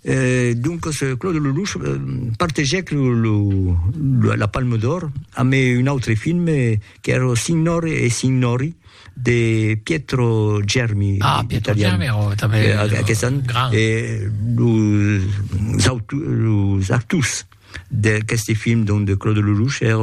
E doncas Claude Lelouch partegèc la Palme d'Or amb un autre film qu'èra Lo signore e i signori de Pietro Germi, ah, Pietro Germi èra tanben un grand, e los actors. d'aqueste film donc de Claude Lelouch er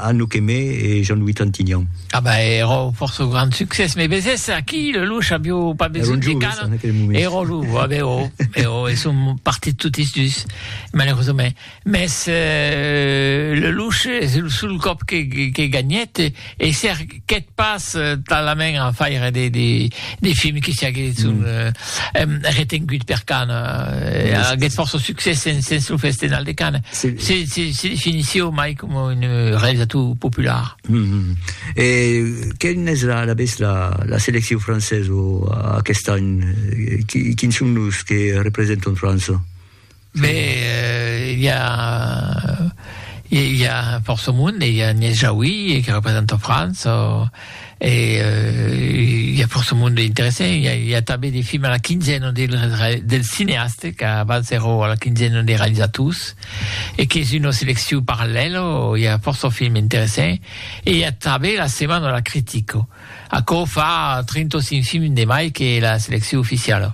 Anouk Aimée e Jean-Louis Trintignant. Ah ben era fòrça grand succès, me vesés aquí Lelouch avió pas besonh de canon, era lo ah ben oh, ben oh, e son partit totis dus malheureusament, mès Lelouch es lo sol còp que gagnèt, E cerquèt pas talament a faire de films que siaguèsson retenguts per Cannes. Aguèt fòrça succès sens lo Festenal de Cannes. Se definisséu mai coma un realizator popular. E quina es alavetz la seleccion francesa aqueste an? Quins son los que representan França? Mais i a i a fòrça monde, i a Agnès Jaoui que representa França e i a fòrça monde interessant, i a i a tanben de films a la quinzena dels cineastes qu'abans èra a la quinzena de realizators e qu'es una seleccion parallèla, i a fòrça films interessants e i a tanben la setmana de la critica, aquò fa 35 films de mai que la seleccion oficiala.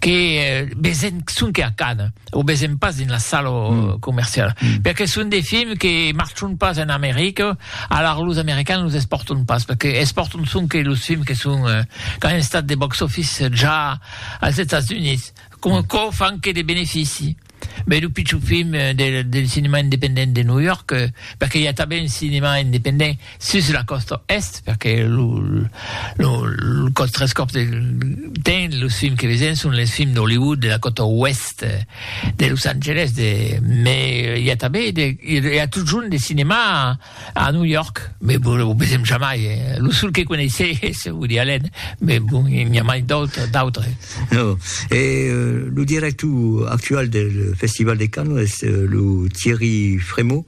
que vesen sonque a Cannes o vesen pas dins la sala comerciala perque son de films que marchon pas en America alara los americans los espòrton pas perque espòrton sonque los films que son qu'an estat de box office ja als Estats Units coma quò fan que de benefici Beh, lo pichon film del del cinema independent de New York, perque i a tanben un cinema independent sus la còsta est, perque lo lo lo còth tres còps del temps los films que vesèm son les films d'Hollywood de la còta oest de Los Angeles de, mès i a tanben de i a totjorn de cinema A New York, mais bon, lo vesèm jamai, eh? Lo sol que coneissè es Woody Allen, mais bon, i n'i a mai d'autres, d'autres. No, e lo director actual del Festival de Cannes es lo Thierry Frémaux,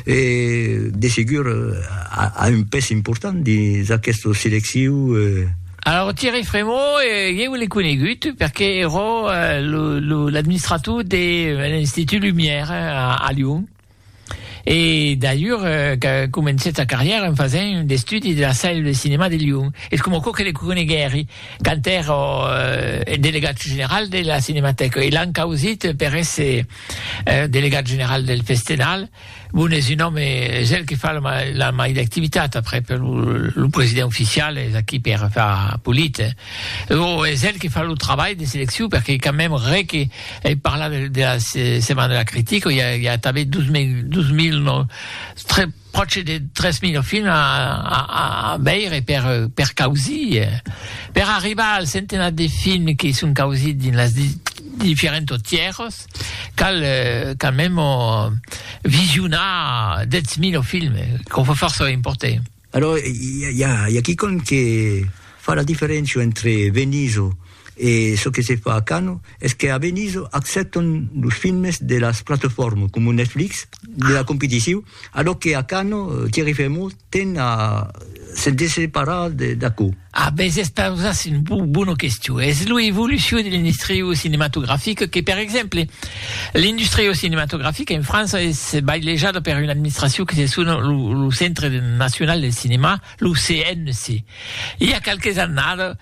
e de segur a, a un pes important dins aquesta selecciu, eh? Alors, Thierry Frémaux, eh, ieu l'ai conegut perque ero lo, lo, l'administrator de l'Institut Lumière a, a Lyon. E dalhur qu'a comencèt sa carrièra en fasent un estudi de la Salle de Cinéma de Lyon. Es coma aquò que le coneguèri quand èra eth delegat general de la Cinematèca e l'an causit per èsser delegat general del Festenal. Bon, es un òme, es el que fa la mai d'activitat, après lo president oficial es aquí per far política. Lo es el que fa lo trabalh de seleccion perque quand meme re que ei parla de de la setmana de la critica i a i a tanben 2000 2000 no tre pròche de 3000 o fin a a a a veire per per causir per arribar al centenat de fin que son causits dins las di diferents tierras cal quand meme visionar 10000 o films quò fò fòrça importe. Alò, i a, i a quicòm que fa la diferéncia entre Venizo e çò que se fa a Cano, es que a Venizo accèptan los filmes de las platefòrmas coma Netflix, de la competició, alò que a Cano Thierry Frémaux ten a se desseparar d'aquò. A bes es pausas un bona question. Es lo evolucion de l'industria cinematografica que, per exemple, l'industria cinematografica en França es bailejada per una administracion que se sona lo Centre National del Cinéma, lo CNC. I a qualques annadas,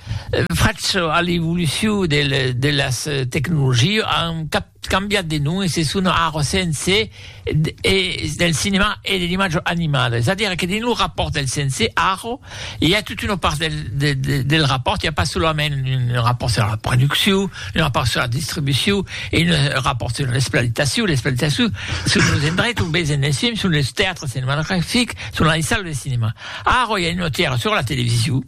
fach a l'evolucion de las tecnologias, an cap cambiat de nom e se sona ara CNC e del cinemà e de l'imatge animada es a dire que dins lo rapòrt del CNC ara i a tota una part del del rapòrt i a pas solament un rapòrt sur la produccion un rapòrt sur la distribucion e un rapòrt sur l'exploitacion l'exploitacion son los endrechs ont vesen es films son los teatres cinematografics son las salles de cinemà ara i a una tièra sur la television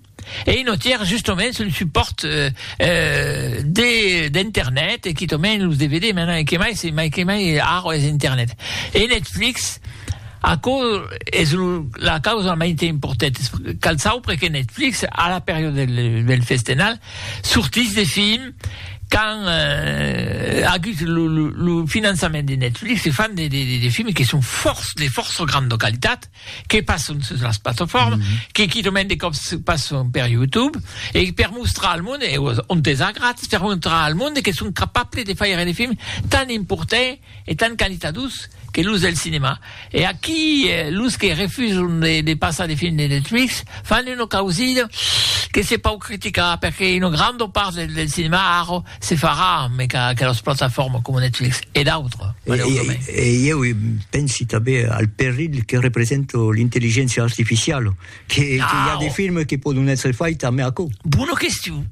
Ei notièr justoments un supòrt de d'Internet e quitament los DVD, mai mai que mai se mai que mai ara es Internet. E Netflix, aquò es lo la causa mai te importèt, cal saupre que Netflix a la periòda del del festenal sortís de films qu'an agut lo lo lo finançament de Netflix e fan de de de films que son fòrç de fòrça granda qualitat que passon sus las platofòrmas, mm -hmm. que quitament de còps passon per YouTube, e per mostrar al monde, e ont es a gratis, per mostrar al monde que son capable de faire de films tan importants e tan qualitadós que los del cinema. E aquí, eh, los que refuson de, de passar de films de Netflix fan una causida que se pòu criticar, perque una granda part del, del cinema ara Se farà, mai qu'a aquelas plataformas coma Netflix e d'autres, maleusament. E, e ieu pensi tanben al perilh que representa l'intelligéncia artificiala, que, ah, que i a de films que pòdon èsser faits amé aquò. Bona question.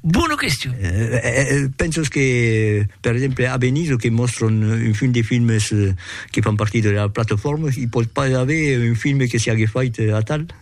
Bona question. Eh, penses que, per exemple, a Venise, que mòstran un fin de films que fan partir de la plataforma, i pòt pas aver un film que siague fait atal?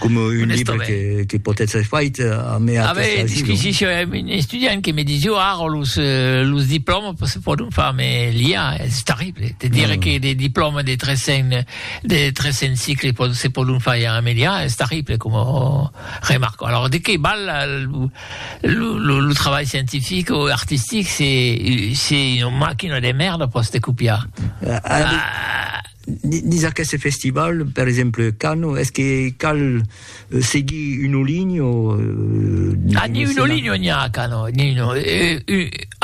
Coma un libre que, que pòt èstre fait a mai a Avè disquisició, eh, un estudiant que me disió ara los, los diplòmas se pòdon far, me l'IA es terrible, te dire que de diplòmas de 300, de 300 cicles pòdon, se pòdon far ara me l'IA es terrible coma remarca. Alors de qué val la, lo, lo, lo trabalh scientific o artistic se, se una machina de merda pòs te copiar? Ah, Dins aqueste festival, per exemple, Cano, es que cal seguir un olin o... Ah, ni un olin o n'ia a Cano, ni no.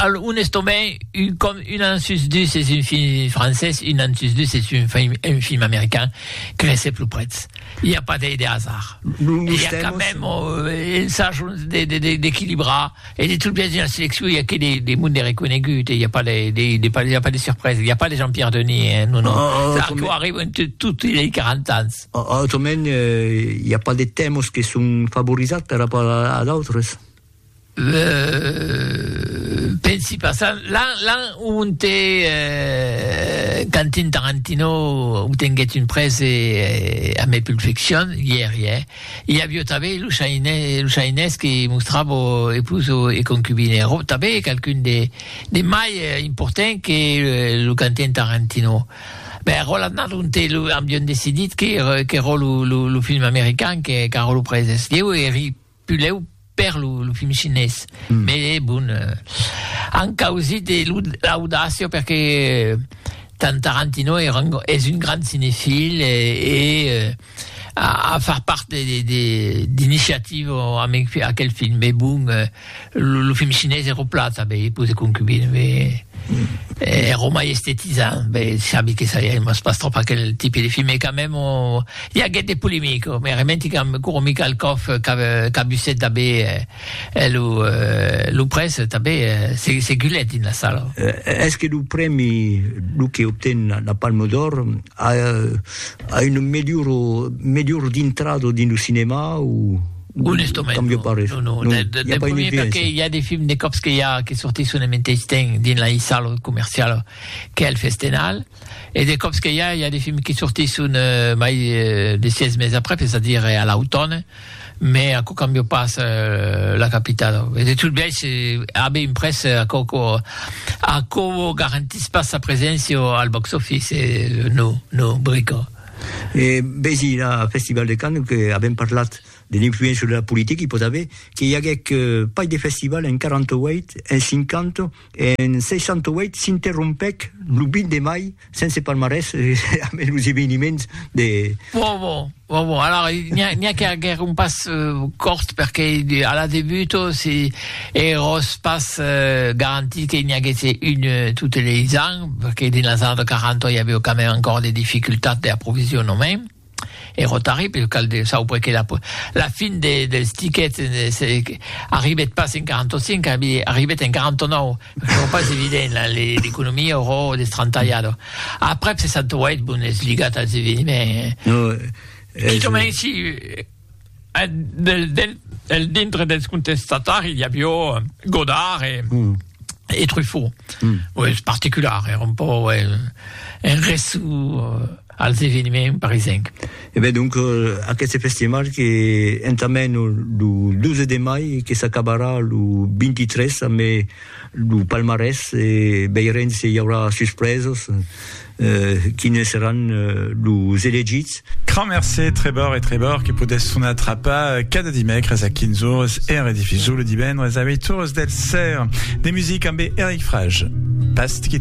Al un estomai, un com un an sus dus es un film francés, un an sus dus es un film, un film american, crese plus prets. I a pas de hasard. Nos tèmas... I a quand meme un sach d'equilibrar. E de tot biais, dins la seleccion, i a que de monde reconegut, e i a pas de, de, de, pas, a pas de surpresa, i a pas de Jean-Pierre Denis, eh, non, non. Oh, oh, Arthur arriba en tot, il a 40 ans. Oh, oh, autrament, eh, i a pas de temos que son favorizats per rapport a, a d'autres. Euh, pensi pas ça. Là, là où on t'est euh, Quentin Tarantino, où t'es une presse et, et à mes pulsions, hier, hier. I avió tanben los ainés que mostrava epus e concubine. Ro tanben qualqu'un de mai important que lo cantent arrentino. Bè, ro l'an nat ont e lo avión decidit que ro lo film american qu'arro lo praises. Ieu eri puleu. per lo, lo film chinés. Mm. Mais eh, bon, eh, an causit eh, l'audacia perque eh, Tarantino era un, és un grand cinefil e, eh, e eh, a, a far part d'iniciativa amb aquel film. Mais bon, eh, lo, lo film chinés era plata, bé, pose concubine, bé, eh, era mai estetisant. Bé, sabi que ça, il m'as pas trop aquel type de film, mais quand même, on, I aguèt de polemica, me arrementi qu'amb Guru Mikhalkov qu'abusèt tanben lo près, tanben se gulèt dins la sala. Es que lo prèmi, lo que obten la Palme d'Or, a una melhora dintrada dins lo cinèma o? Onestament non, non, non. Del primièr perqué i a de films de còps que i a que sortisson en meteis temps dins la sala comerciala qu'es el Festenal. E de còps que i a, i a de films qui sortisson mai de sièis mes après, es a dire a l'autòne, me aquò cambia pas la capital. E de tot biais, a be imprès, aquò quò aquò vos garantís pas sa preséncia al box office, no, no, brica. E vesi la Festival de Cannes, que avèm parlat de l'influéncia de la politica, i pòt aver que i aguèc pas de festival en 48, en 50, En 68 s'interrompèc lo 20 de mai sense palmarès ambe los eveniments de. Bon, bon, bon, bon, alara n'i a qu'aguèr un pas cort perque a la debut se eros pas garantit que n'i aguèsse un totes leis ans, perque dins las annadas 40 i avèu quand mème encòr de dificultats d'aprovisionament. E rotari, per cal de sauber que la fin dels tiquets arribet pas en 45, arribet en 49, çò pas evident, l'economia aurò destrantalhada. Aprèp 68, bon, es ligat als eveniments. Quicòmens, si Del dintre dels contestatari i avió Godard e Truffaut. Oi, es particular, èra un pò un ressu als eveniments parisenc. E ben donc, aqueste festival que entamèn lo 12 de mai e que s'acabarà lo 23 ambe lo palmarès e veirem se i aurà suspresas. Quines seràn los elegits? Crà mercé, Trebor e Trebor, que podètz sonar Trapà cada dimècres a 15 ores e en redifusó lo divendres a 8 ores del ser. De musica ambé Eric Frage. Pas quitte.